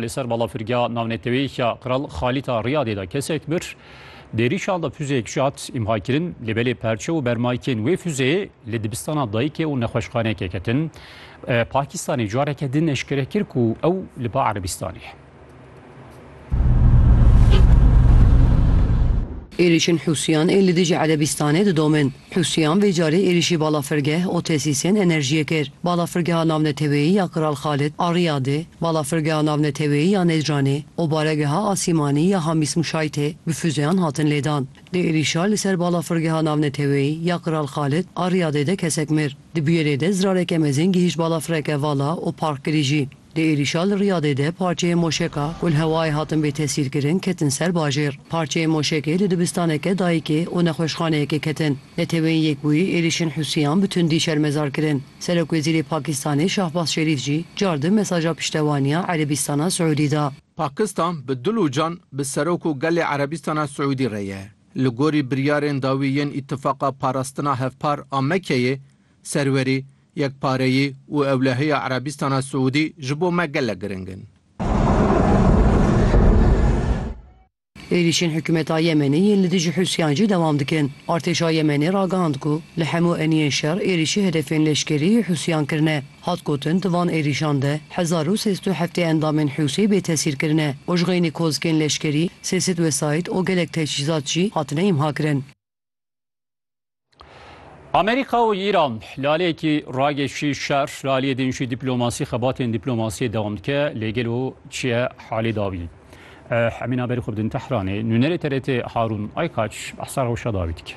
Li ser balafirgeha navneteweyî ya Kral Xalîd a Riyadê de kesek bir di êrîşan de fuzeyek jî hat îmhakirin lê belê perçe û bermayîkên wê fuzeyê li dibistana dayikê û nexweşxaneyekê ketin. Pakistanê careke din eşkere kir ku ew li ba Erebîstanê ye. Êrîşên Hûsiyan ên li dijî Erebîstanê didomin. Husiyan vê carê êrîşî balafirgeh û tesîsên enerjiyê kir. Balafirgeha Navneteweyî ya Kral Xalid a Riyadê, Balafirgeha Navneteweyî ya Necranê û Baregeha Asîmanî ya Hamîs Muşaytê bi fûzeyan hatin lêdan. Di êrîşa li ser Balafirgeha Navneteweyî ya Kral Xalid a Riyadê de kesek mir. Di bûyerê de zirareke mezin gihîşt balafireke vala û park kirî jî. Di êrîşa li Riyadê de parçeyên moşeka ku li hewayê hatin bêtesîrkirin ketin ser bajêr. Parçeyên moşekê li dibistaneke dayikê û nexweşxaneyekê ketin. Neteweyên Yekbûyî êrîşên Hûsiyan bi tundî şermezar kirin. Serokwezîrê Pakîstanê Şahbaz Şerîf jî car di mesaja piştevaniya Erebîstana Siûdî da. Pakistan bi dil û can bi serok û gelê Erebîstana Siûdî re ye. Li gorî biryarên dawî yên Îtifaqa Parastina Hevpar a Mekkeyê, Serwerî Yekpareyî û ewlehiya Erebîstana Siûdî ji bo me gelek giring in. Êrîşên hikûmeta Yemenê yên li dijî Hûsiyan jî dewam dikin. Artêşa Yemenê ragihand ku li hemû eniyên şer êrîşî hedefên leşkerî yê Hûsiyan kirine. Hat gotin di van êrîşan de hezar û sê sed û heftê endamên Hûsî bêtesîr kirine û ji xeynî kozikên leşkerî sê sed wesayît û gelek teçhîzat jî hatine îmhakirin. Amerîka û Îran laleyekî ragêşî şer laliyê din jî dîplomasî xebatên dîplomasiyê dewam dike lê gelo çiye halê dawî. Hemîna berî xwe bidin Tehranê nûnerê TRT Harûn Aykaç behsa rewşa dawî dike.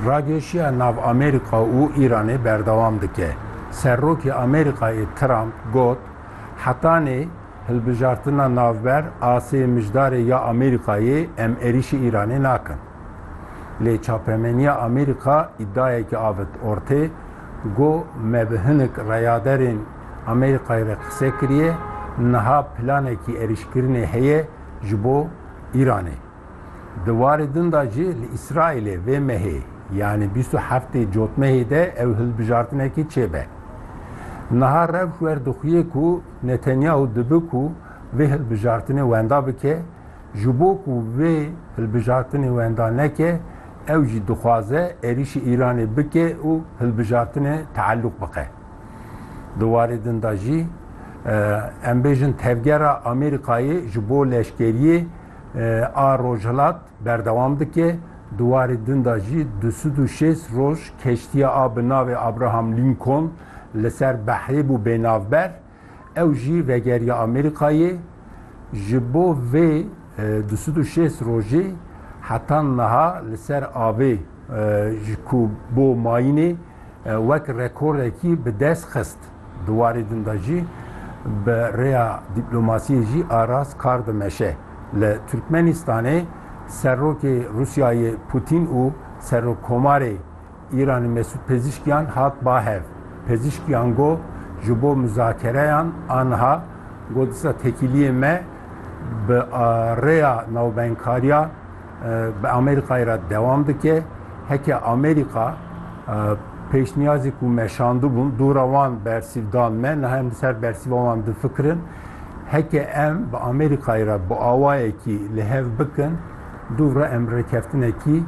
Ragêşiya nav Amerîka û Îranê berdewam dike. Serokê Amerîkayê Trump got hetanê Hilbijartina navber a sê mijdarê ya Amerîkayê em êrîşî Îranê nakin. Lê çapemeniya Amerîka îdiayekî avêt ortê go me bi hinik reyaderên Amerîkayê re qise kiriye, niha planekî êrîşkirinê heye ji bo Îranê. Di warê din de jî li Îsraîlê vê mehê yanî bîst û heftê cotmehê de ew hilbijartinekî çêbe. Niha rewş werdixuye ku, Netanyahu dibe ku vê hilbijartinê wenda bike, ji bo ku vê hilbijartinê wenda neke, ew jî dixwaze êrîşî Îranê bike û hilbijartinê teelûq bixe. Di warê din de jî em bêjin tevgera Amerîkayê ji bo leşkeriyê a Rojhilat berdewam dike, di warê din de jî du sed û şêst roj keştiya a bi navê Abraham Lincoln, Li ser behrê bû bênavber, ew jî vegeriya Amerîkayê, ji bo vê du sed û şêst rojê heta niha li ser avê ji ku bo mayînê wek rekorekî bi dest xist. Di warê din de jî bi rêya dîplomasiyê jî arast kar dimeşe. Li Tirkmenistanê Serokê Rûsyayê Pûtîn û Serokkomarê, Îranê Mesûd Pezîşkiyan hat bahev. Pezîşkiyan got, Ji bo muzakereyan a niha got disa tekîliyê me bi rêya navbeynkariya bi Amerîkayê re dewam dike. Heke Amerîka pêşniyazê ku me şandibûn dûra wan bersîv dan me, niha em li ser bersîva wan difikirin. Heke em bi Amerîkayê re bi awayekî li hev bikin, dû re em rêkeftinekî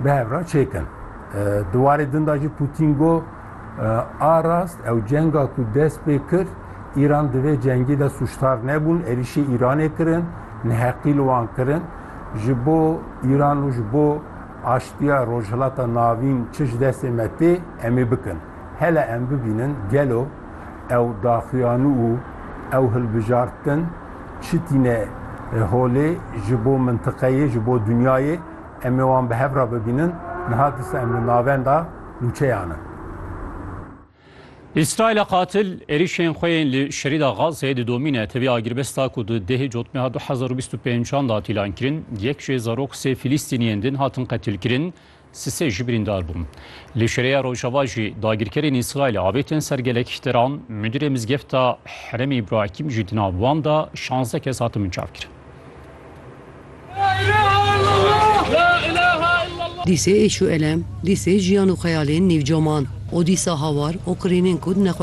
bi hev re çêkin. Di warê din de jî Pûtîn got, A rast ew cenga ku dest pê kir, Îran di vê cengê de sûcdar nebûn, êrîşê Îranê kirin, neheqî li wan kirin. Ji bo Îran û ji bo aştiya Rojhilata Navîn çi ji destê me tê, em ê bikin. Hele em bibînin gelo ew daxuyanî û ew hilbijartin çi tîne holê ji bo mintiqeyê, ji bo dinyayê. Em ê wan bi hev re bibînin. Niha disa em li navenda nûçeyan in. Îsraîla qatil êrîşên xwe yên li Şerîda Gazeyê didomîne. Tevî agirbesta ku di dehê cotmeha du hezar û bîst û pênc an de hat îlankirin, yek jê zarok sê Filîstîniyên din hatin qetilkirin, si sê jî birîndar bûn. Li Şereya Rojava jî dagirkerên Îsraîlê avêtin ser gelek teran, mudîrê mizgefta Herêmê Îbrahîm jî di nav wan de şazdeh kes hatin binçavkirin. Dîsê êş û elem, dîsê jiyan û xeyalên nîvcoman û dîsa hawar û qirînên ku di nexweşxaneyan de bûn.